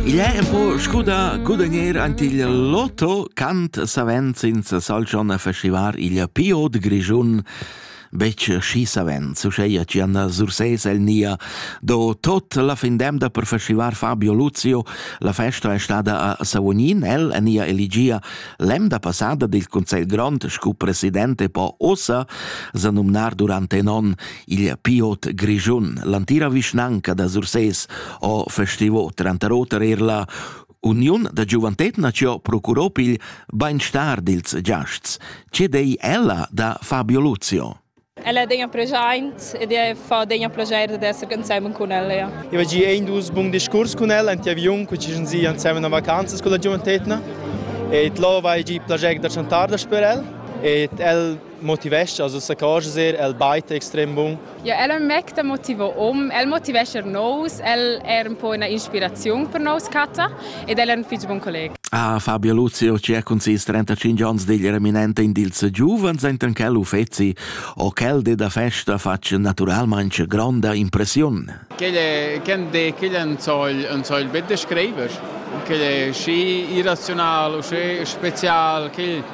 Il è un po' scuda gudagnere ant il lotto cant savens in Salzon a festivar il Pio de Grischun bec schi savens, uscheia ci anna Surses el nia, do tot la findemda per festivar Fabio Luzio, la festa è stada a Savognin, el e nia eligia lemda passada del Consiglio Grond, scu presidente po ossa, zanumnar durante non il piot grischun. L'antira vischnanca da Sursés ho festivo tranter oter er la Uniun da giuventet nació procurò pil beinstar dils giasts. Ce dei ella da Fabio Luzio? Ella è un present ed è fa un piacere di essere insieme con ella. Ja. Io oggi è un dus bun discurs con ella, in avion, che ci sind insieme a vacanze con la giuventetna. E lo va già piacere da chantar per ella. E el motivescha a s'accorger er el bait extrem bun. Ja, el è un mec da motivo um, el motivescha er nous, el è un po una inspirazione per nous Katta ed el è un fitg buon collega. Ah, Fabio Luzio, c'è con ses 35 anni digl reminente in dils giuvens enten quel uffeci o quel de da festa faccia naturalmente gronda impressiun. Quel quel en soll en soll bett de schreiber. Quel è schi irrazional, schi spezial, quel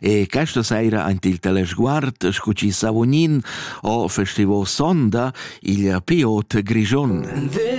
E questa saira ant il telesguard scu chi savognin ho festivo sonda il Piot Grigion. This